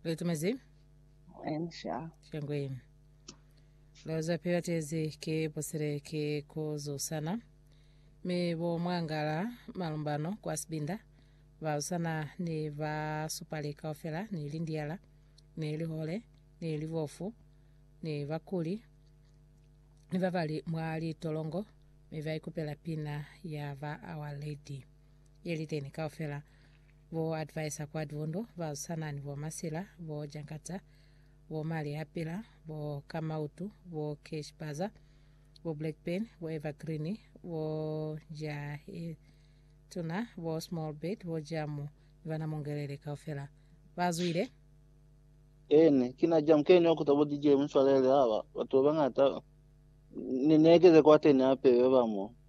Litumezi. Ensha. Shangwe. Loza pila tezi ke posere ke kozo sana. Me bo mwangala malumbano kwa sibinda. Ba usana ni ba supale kaufela ni lindiala ni lihole ni libofu ni bakuli ni babali mwa litolongo me ba ikupela pina ya ba our lady yeliteni kaufela Bo Adviser Kwadwondo, ba swana ni bo Masila, bo Jankata, bo Mali a Pila, bo Kamautu, bo Cash Baza, bo Blackburn, bo Evergreen, bo Njahetuna, bo Small Bird, bo Jamu ni bana Mungelele kaufela ba zwile. Ene, kina Jamu keni wa kuta bo DJ Muswalele aba, batu ba bangata, ni ne keze kwateni hape ba ba mo.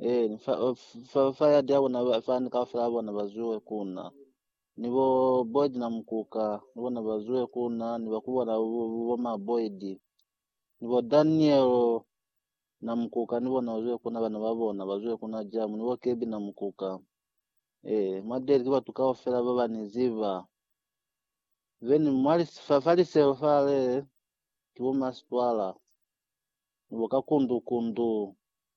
Ee, ni fa, fa, fa ya dia bona ba- fani kaufela bona ba zuwe kuna. Ni bo Boyd na Mukuka, ni bona ba zuwe kuna, ni ba kubona bo, bo, bo ma Boyd. Ni bo Daniel na Mukuka, ni bona ba zuwe kuna, bana ba bona ba zuwe kuna jamu, ni bo Kebi na Mukuka. Ee, mwa Deli ki batu kaufela ba ba ni ziba. Then mwa lis- fa, fa liselo fale, ki bo masitwala, ni bo kakundu-kundu,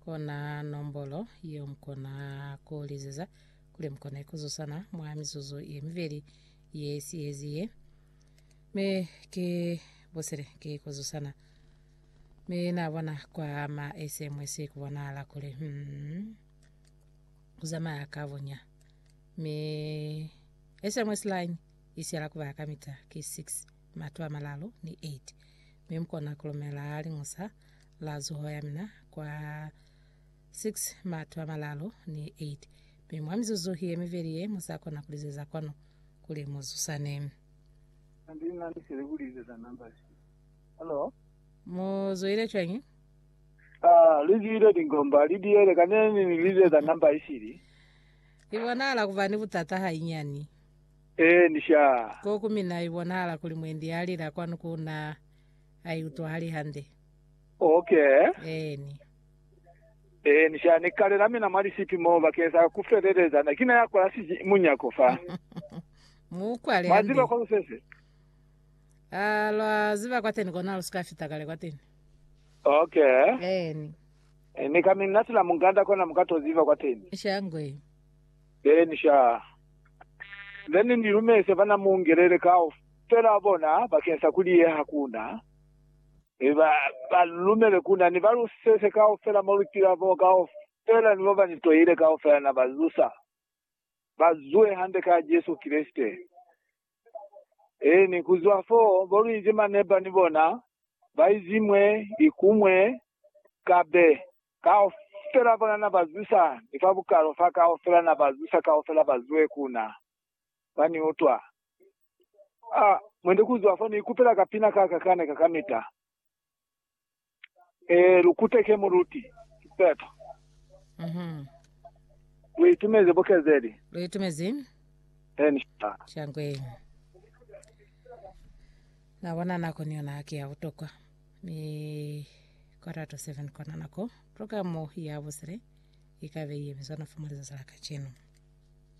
Kona nombolo yeo mukona ku lizeza kuli mukone ku zusana mwa mizuzu ye mibeli ye sihezi ye. Mi ki busile ki ku zusana. Mi na bona kwa ma SMS ku bonahala kuli hmm, ku zamaya ka bonya. Mi SMS line i siyala ku ba kamita ki 6. mato a malalu ni eiti, mi mukona kulumela liñusa la zuho ya mina kwa 6 mato a malalu ni eiti, mi mwa mizuzu ye miveli ye musakona kulizeza kwanu kuli muzusane. Hande na misele kulizeza number si. Hello. Muzwile cwañi? Ah, lizwile lingomba lidiyele kaneni nilizeza number isili. Libonala kuba ni butata hainyani. Ee, ni shaa. Ko ku mina i bonahala kuli mwendi ya lila kwanu ku na, a i utwahali hande. Okay. Eeni. Ee, ni shaa. Ni kalela mina mwa lisipi mo bakeng sa ku feleleza. Na kina ya kola siji munyako fa. Mu ukwale Mwa ziba hande. kwa lu sese? A lwa ziba kwateni kona lu si ka fita kale kwateni. Okay. Eeni. Ni ka mi natela munganda kona mu ka to ziba kwateni. Shangwe. Then sha, then Ni lumeze bana Mungelele kaufela bona bakeng sa ku liyeha ku Na, mi ba, ba lumele ku Na. Ni ba luseze kaufela mo lutila mo kaufela, ni boba Ni toile kaufela na ba zusa, ba zuhe hande ka Jesu Kreste. Eeni, kuzwa foo, bo luinzi maneba ni bona, baizi mwe ni kumwe, kabe kaufela bona na ba zwisa, ni fa bukalo fa kaufela na ba zwisa kaufela ba zwe ku na. Ba ni utwa. A, mwende ku zwa fo ni ikupela kapina ka ka kane ka kamita. E, lu kuteke muluti, sipeto. Mhm. Lu itumeze bukezeli. Lu itumezi? Eni, sha. Shangwe. Na bona nako ni yona ki ya butokwa, mi quarter to seven kona nako programo ya busile ikabe ye bizwa na fuma lizatsi la kacenu.